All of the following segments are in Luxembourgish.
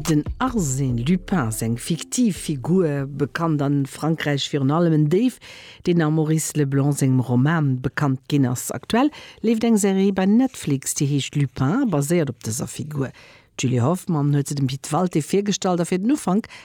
Den Arsène Lupin, seng fiktiv Figur, bekannt a Frankräich virun allem en Déif, deen am Maurice Leblanc sengem Roman bekannt ginn ass. Aktuell leeft eng Serie bei Netflix, déi heescht Lupin a baséiert op dëser Figur. D'Julie Hoffmann huet se dem Pit Walté virgestallt a fir den Ufank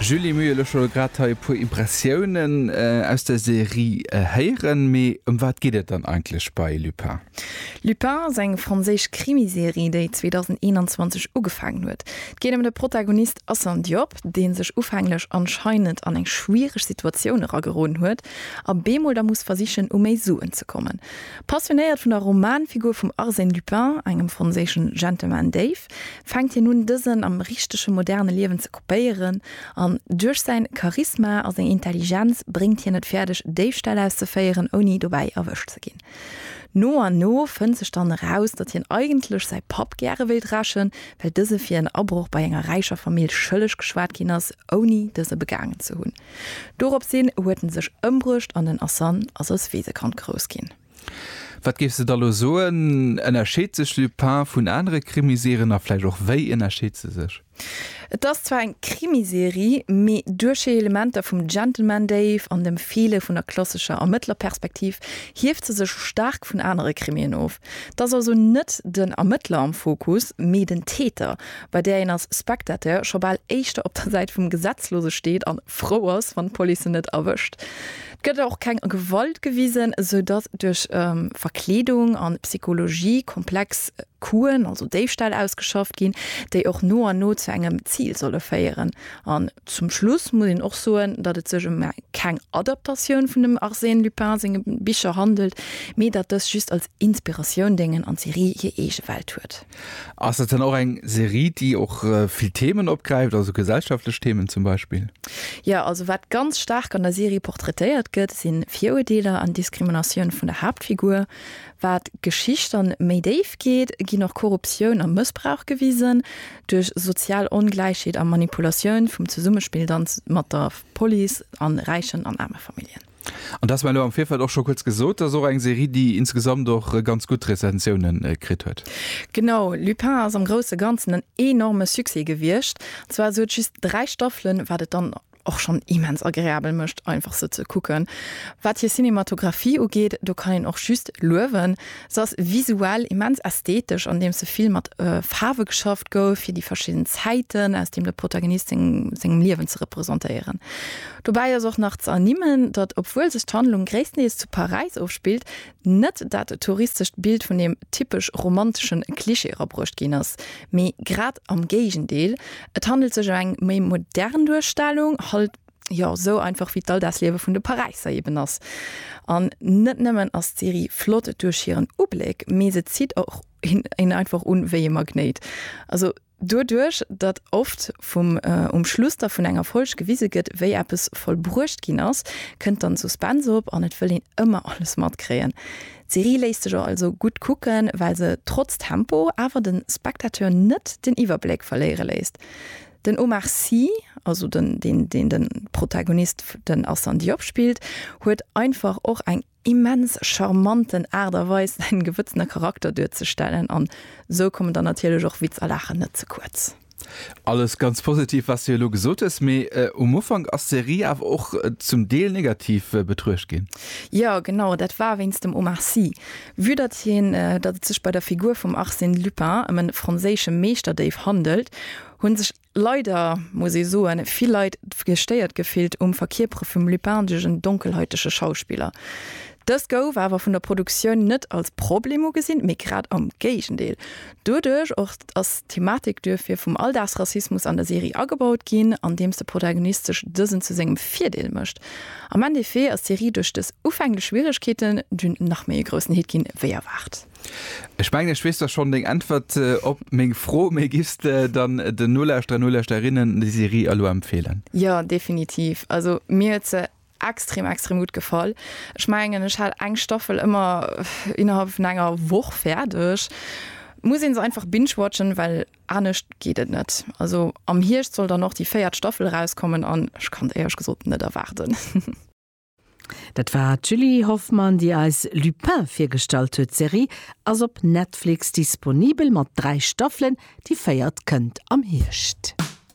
Julie, mir hu jo lech elo grad hei e puer Impressiounen aus der Serie héieren, mee ëm wat geet et dann eigentlech bei Lupin? Lupin ass eng franséisch Krimiserie, déi 2021 ugefaangen huet. Et geet ëm de Protagonist Assane Diop, dee sech ufänglech anscheinend an eng schwiereg Situatioun erageroden huet a bemol da muss versichen, u méi Suen ze kommen. Passionéiert vun der Romanfigur vum Arsène Lupin, engem franséischen Gentleman Déif, fänkt hien un, dësen am richtege moderne Liewen ze kopéieren an duerch säin Charisma a seng Intelligenz bréngt hien et fäerdeg, Déifställ auszeféieren, ouni dobäi erwëscht ze ginn. No an no fënnt sech dann eraus, datt hien eigentlech säi Papp gäre wéilt rächen, well dëse fir en Abroch bei enger räicher Famill schëlleg geschwat ginn ass, ouni dëse begaangen ze hunn. Doropshin huet en sech ëmbruecht an den Asan ass als Weesekand grouss ginn. Wat géifs de da lo soen, ënnerscheet sech Lupin vun anere Krimiserier a vläicht och wéi ënnerscheet se sech? Et ass zwar eng Krimiserie, mee duerch hir Elementer vum Gentleman Dave an dem Feele vun der klassescher Ermëttlerperspektiv hieft se sech staark vun anere Krimien of. Et ass also net den Ermëttler am Fokus, mee den Täter, bei där een als Spectateur scho bal éischter op der Säit vum Gesetzlose steet a frou ass, wann d'Police en net erwëscht. Et gëtt och keng Gewalt gewisen, sou datt duerch Verkleedung a Psychologie komplex. Kuen, also Déifställ, ausgeschafft ginn, déi och no an no zu engem Zil solle féieren. An zum Schluss muss een och soen, datt et sech ëm keng Adaptatioun vun dem Arsène Lupin senge Bicher handelt, mee datt dës just als Inspiratioun déngen an d'Serie hir eege Welt huet. Ass dat dann och eng Serie, déi och vill Themen opgräift, also gesellschaftlech Themen zum Beispill? Jo, also wat ganz staark an der Serie portraitéiert gëtt, si Viruerdeeler an Diskriminatioun vun der Haaptfigur, Wat d'Geschicht dann méi déif geet, ginn och Korruptioun a Mëssbrauch gewisen. Duerch sozial Ongläichheet a Manipulatioun vum Zesummespill dann mat der Police an räichen an aarme Familljen. An dass mer elo am Virfeld och scho kuerz gesot, dass och eng Serie, déi insgesamt och ganz gutt Rezensioune kritt huet. Genau, Lupin ass am grousse Ganzen en enorme Succès gewiescht. Zwar sou et just 3 Staffelen, wat et dann och schonn immens agreabel mécht, einfach se ze kucken. Wat hir Cinematographie ugeet, do kann een och just luewen. Se ass visuell immens ästhetesch, andeems se vill mat Faarwe geschafft gouf, fir déi verschidden Zäiten, aus deem de Protagonist sengem Liewen ze representéieren. Dobäi ass och nach ze ernimmen, datt, obwuel sech d'Handlung gréisstendeels zu Paräis ofspillt, Net dat touristescht Bild vun deem typesch romantesche Klischee erabruecht ginn ass, mee grad am Géigendeel, et handelt sech ëm eng méi modern Duerstellung, halt jo esou einfach wéi d'Alldagsliewe vun de Paräisser eben ass. An net nëmmen ass d'Serie flott duerch hiren Ubléck, mee se zitt och een einfach un wéi ee Magnéit. Also. Doduerch, datt oft vum um Schluss da vun enger Folg gewise gëtt, wéi eppes vollbruecht ginn ass, kënnt dann Suspense op an et wëll een ëmmer alles matkréien. D'Serie léisst sech also gutt kucken, well se trotz Tempo awer de Spectateur net den Iwwerbléck verléiere léisst. Den Omar Sy, also den deen den de Protagonist, den Assane Diop, spillt, huet einfach och eng immens charmanten Aart a Weis säin Gewëtzen a Charakter duerzestellen an sou kommen dann natierlech och Witz a Laachen net ze kuerz. Alles ganz positiv wats de elo gesot hues, mee um Ufank ass d'Serie awer och zum Deel negativ betruecht ginn. Jo genau, dat war wéinst dem Omar Sy. Vue datt hien datt et sech bei der Figur vum Arsène Lupin ëm en franséische Meeschterdéif handelt, hunn sech Leider muss ee soen, vill Leit gestéiert gefillt um Verkierpere vum Lupin duerch en donkelhäutege Schauspiller. Dëst gouf awer vun der Produktioun net als Problem ugesinn, mee grad am Géigendeel. Doduerch och ass d'Thematik duerfir vum Alldagsrassismus an der Serie agebaut ginn, andeems de Protagonist sech dësen zu sengem Virdeel mécht. Am Endeffet ass d'Serie duerch dës ufänglech Schwieregkeeten dunn nach méi e groussen Hit ginn, wéi erwaart. Ech mengen ech weess da schonn deng Äntwert op meng Fro, mee giffs de dann den Nolauschterer, Nolauschterinnen déi Serie elo empfeelen? Jo, definitiv. Also mir huet se extrem, extrem gutt gefall. Ech mengen ech hat eng Staffel ëmmer innerhalb vun enger Woch fäerdeg. Muss een se einfach binge-watchen, well anescht geet et net. Also am Hierscht soll dann och déi véiert Staffel erauskommen an ech kann et éierlech gesot net erwaarden. Dat war d'Julie Hoffmann, déi eis Lupin virgestallt huet. D'Serie ass op Netflix disponibel mat dräi Staffelen, déi véiert kënnt am Hierscht.